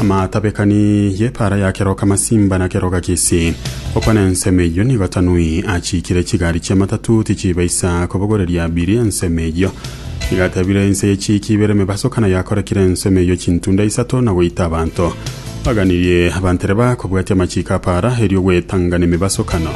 Amatabekani y'epaara ya keroka masimba na keroka kisi. Okwa nensemo eyio nigo Tanui achiikire chigari chi'amatatuu tichibaisa kobogoreria abiri ensemo eyio. Igatebire ense y'echiiki ibere emebaso kana yakorekire ensemo eyio chintunda isato na goita abanto. Baganirie abantereba kobwatia amachiiko a paara erio gwetangana emebasokano.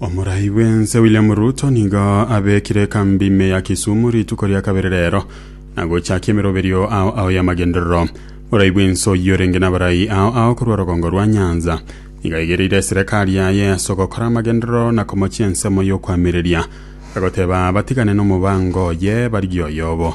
Omorai bw'ense William Ruto nigo abekire ekambi ime ya Kisumu rituko ria kabere rero na gochakia emeroberio ao ao y'amagenderero. Omorai bw'ense oyio orenge n'abarai ao ao korwa rogongo rwa Nyanza nigo aigereire eserekari yaye ase ogokora amagenderero na komochia ensemo y'okoamereria, agoteba batigane nomobaango oye barigie oyobo.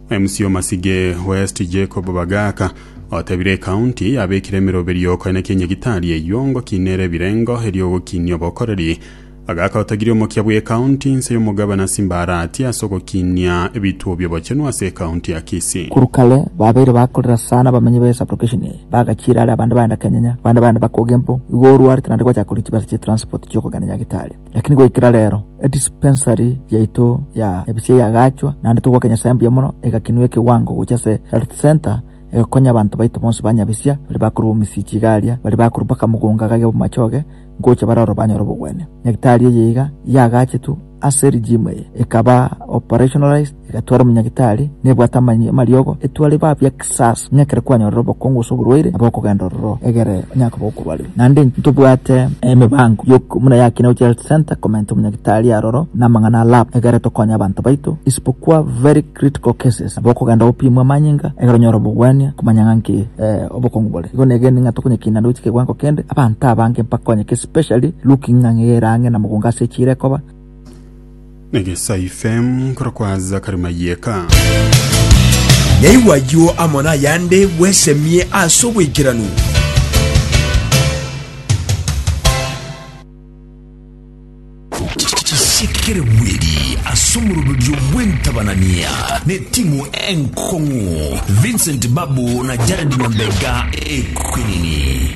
MC Omasige West Jacob Bagaka otebire ecounty yabekire emeroberio koenekia nyagitari eyio ngoki nere ebirengo erio ogokinia obokoreri. Bagaka otagire omokia bwe ecounty inse y'omogabana Simbarati ase ogokinia ebituo biobochenu ase ecounty ya Kisii. Korwa kare babeire bakorera sana abamenyi be sublocation eye, bagachiira are abande baenda Kenyanya, abande baenda Bakoge mpo, igo orwarete naende gwachaka korisia chibesa chia transport chiokogenda nyagitari. Lakini goikera reero, edispensari yaito ya ebisia yagaachwa, naende togwaka Nyasae mbuya mono, egakinwa ekewango gocha ase Health Centre, egokonya abanto baito bonsi ba nyabisia, baria bakorwa bomisii chiga aaria, baria bakorwa mpaka mogonga gage bw'amachoge, ngocha bare oro banyore obogwenia. Nyagitari eye iga yagaachetwe ase rigimu eye, ekaba operationalized, Egetware omonyagitari, nebwate amanyinga 'amariogo, etware ba bia kisasi, ng'a ekero kwanyorire obokongu gose oborwaire, nabo okogenda ororo, egere onye akoba okorwarigwa. Naende intwe tobwate emebango y'okoigwa buna ya Kinegochi Health Centre, komenta omonyagitari aroro namang'ana a lab, egere tokonye abanto baito, isibokwa very critical cases, nabo okogenda gopimwa amanyinga, egere onyore obogwania, komanya ng'a nki obokongu bore. Igo negenire ng'a tokonyekina naende gochia kegoango kende abanto abange mpaka onye ki especially looking ng'a ng'egere ang'e na mogongo ase echiira ekoba. Negesaifem kora kwa Zakari Mayeka. Yaigwa ayio amo nayande bwesemie ase oboikeranu. Chisekere bweri ase omoroberio bw'entabanania n'etimu enkong'u Vincent Babu na Jared Nyambega ekwenini.